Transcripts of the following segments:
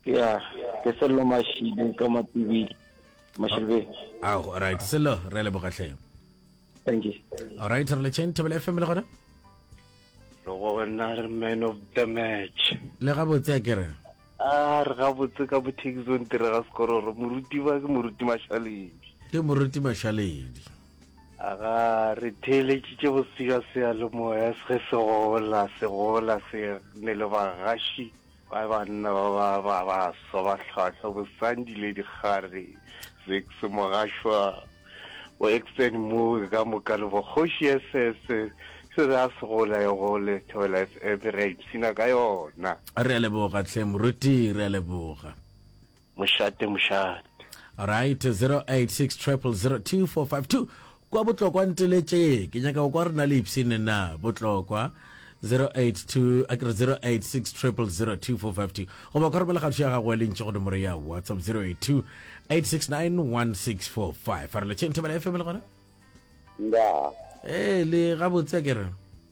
ya ke sello mashidi ka matibidi mashilbe ah, ah right sello re leboga tlhe thank you all right re le chain table fm le gona lo gona re man of the match le ga botse ke re a re ga botse ka boteki zone tere ga sekororo moruti ba ke moruti mashaledi ke moruti mashaledi aga re theeletšitše bosega seya le moya se se gola se gola se ne le bagaši Ba banna ba ba ba baswa ba hlwahlwa, Bosandi le Dikgare, Zix, Mogashwa, bo Exton Mooi ka moka le bo Kgoši SS. Se re a se gola e gole, Thobela FM re a ipshina ka yona. Re a leboga tlhe moruti, re a leboga. Mošate mošate. Right, 0860002452 kwa botlokwa nteletše ke nyaka go kwa re na le ipsene na botlokwa 082 a ke re 0860002452 goba kwa romela kgatho ya gago ya lentše godimo re ya whatsapp 082 8691645 a re letšeng thobela fm le gona Ndaa. ee le gabotse a ke re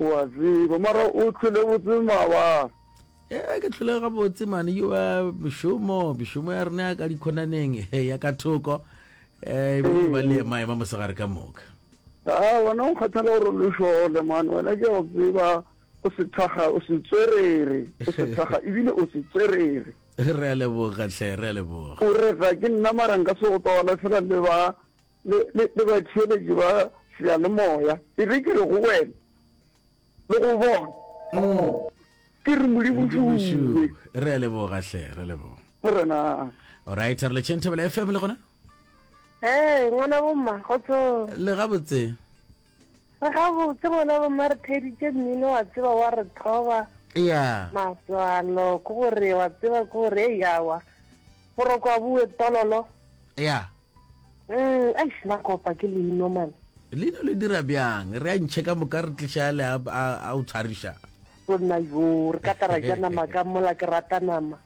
O a tseba, mara o hlwele botse mawaa. Ee, ke hlwele gabotse mane, yoa mešomo, mešomo ya rena ya ka dikhonaneng, he, ya ka thoko, ee, e be e ba le ema, ema mosegare ka moka. Haa, wena o nkgathela gore o le šole, mane, wena ke a go tseba, o sethaga, o setswerere, o sethaga, ebile o setswerere. Re a leboga, hle, re a leboga. O re, Ga ke nna, mara nka se go tole, fela le ba le, le, le batheeletši ba seyalemoya. Ke be ke re go wena, le go bona, Oo, ke re Modimo Modimo šuu, šuu. re a leboga hle, re leboga. Morena. Alright, re letšeng Thobela FM le gona? Hee, ngwana bomma, kgotsong. Le gabotse. Re gabotse bona bo mare thedi tše mmino wa tseba wa re thoba. Ea. Maswalo ke gore wa tseba ke gore ei awa. Boroko a bue tololo. Ea. Mm, eish na kopa ke leino man. Leino le dira bjang? Re a ntšhe ka moka re tliša le a a o tshwariša. Tonna yo re ka tara ja nama ka mola ke rata nama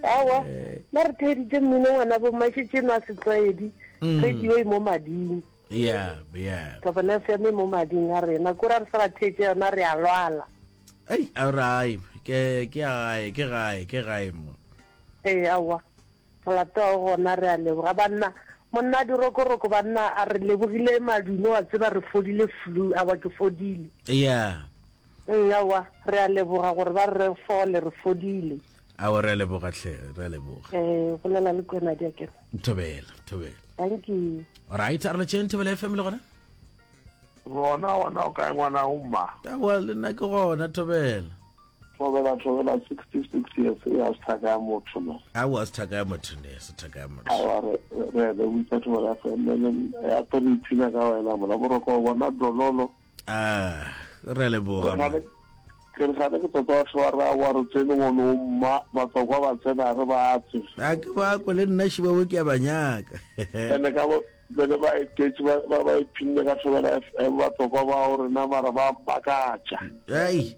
awa ba re theeditše mmino ngwana bo mashetse no a setlwaedi mm. radio e mo mading yeah yeah tabana se me mo mading a rena ko ra re sa theetse yona re a lwala ai a rai ke ke ai ke gai ke gai mo eh awa Re latoa gona re a leboga banna. Monna dirokoroko banna a re lebogile madume wa tseba re fodile flu a wa ke fodile. Yeah. Mm, awa re a leboga gore ba re fole re fodile. Awa re a leboga hle re a leboga. Eh bolela le kwena di akere. Thobela thobela. Thank you. Alright, a re tšeng thobela FM le gona. Gona gona o kae ngwana o mma? Awa le nna ke gona thobela. Thobela, Thobela, 66 years, e ga se thaka ya motho no. Aowa, ga se thaka ya motho ne, ga se thaka ya motho. Aowa, re, re, re witsa Thobela FM, le, le, ya to re ipshina ka wena, mona, boroko o bona dololo. Ah, re le boga. Re gane, ke re gane ke tota wa thoba ra wa re tsene go no mma, batsokwa ba tsena re ba tse. A ke ba ko le nna shiba wo ke ya banyaka. Ene ka bo, bene ba etetsi ba, ba, ba iphinne ka Thobela FM, batsokwa ba o rena mara ba makatša. Ai.